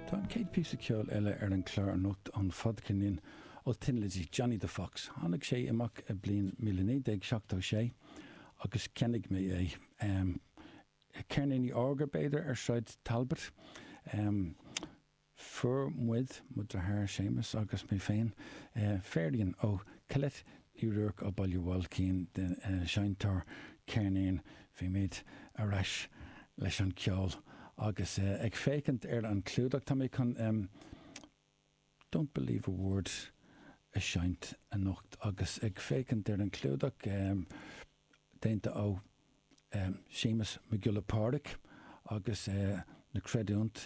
Tá an chéad píosa ceoil eile ar an gclár anocht ón fadcheirnín ó Thin Lizzy, Johnny the Fox. Tháinig sé amach i bliain míle naoi déag seachtó sé agus cheannaigh mé é. Ceirníní órga, b'fhéidir, ar Sráid Talbot. Fuair muid, mo deartháir Séamus agus mé féin, féirín ó Colette i mBaile Bhailcín an seinnteoir ceirnín bhímid ar ais leis an gceol agus ag féachaint ar an gclúdach tá mé chun Don't Believe a Word a seinnt anocht agus ag féachaint ar an gclúdach déanta ó Séamus Mac Giolla Phádraig agus na creidiúint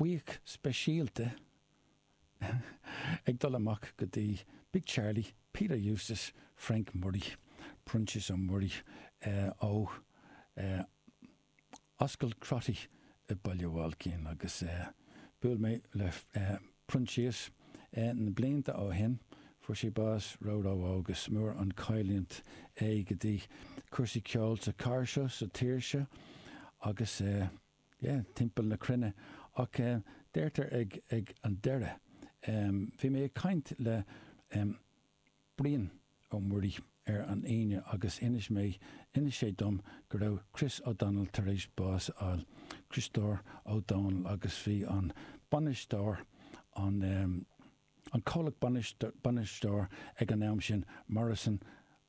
Buíochas speisialta ag dul amach go dtí Big Charlie, Peter Eustace, Frank Murray, Proinsias Ó Muirí ó Ascaill Crotty i Baile Bhailcín agus bhuail mé le Proinsias na blianta ó shin, fuair sé bás ró ró óg, is mór an chailliúint é go dtí cúrsaí ceoil sa cathair seo sa tír seo agus. yeah, timpeall na cruinne. Ach eh, deirtear ag, ag an deireadh em, bhí mé ag caint le em Brian Ó Muirí ar an Aoine agus inis mé, inis sé dom go raibh Chris O'Donnell tar éis bás a fháil, Críostóir Ó Domhnaill agus bhí an bainisteoir, an eh, An comhlacht bainisteoir ag an am sin Morrison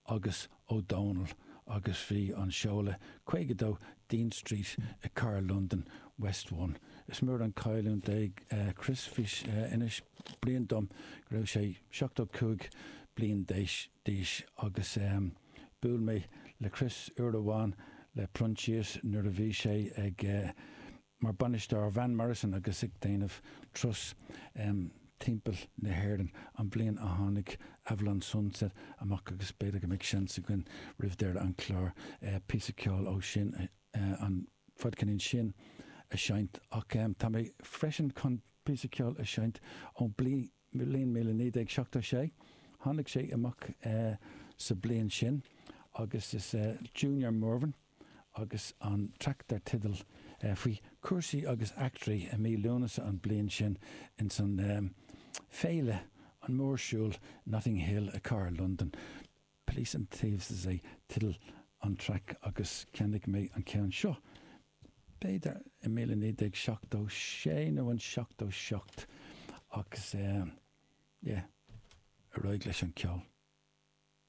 agus Ó Dónaill agus bhí an seoladh 52 Dean Street i Cathair Londain West One. Is mór an chailliúint é Chris. Fuair sé bás. Is léir dom go raibh sé 75 bliain d'aois agus buail mé le Chris uair amháin le Proinsias nuair a bhí sé ag mar Bhainisteoir Van Morrison agus ag déanamh turas timpeall na hÉireann an bhliain a tháinig Avalon Sunset amach agus b'fhéidir go mbeidh seans againn roimh deireadh an chláir píosa ceoil ó sin, an fadcheirnín sin, a seinnt ach tá mé freisin chun píosa ceoil a seinnt ón bliain. bliain míle naoi déag seachtó sé. Tháinig sé amach sa bliain sin agus is Junior Murvin agus an traic dar teideal faoi chúrsaí agus eachtraí i mí Lúnasa an bliain sin ins an Féile, an mórshiúl Notting Hill i Cathair Londain. Police and Thieves is ea teideal an traic agus cheannaigh mé an ceann seo, b'fhéidir i míle naoi déag seachtó sé nó an seachtó seacht agus eh yeah, ar aghaidh leis an ceol.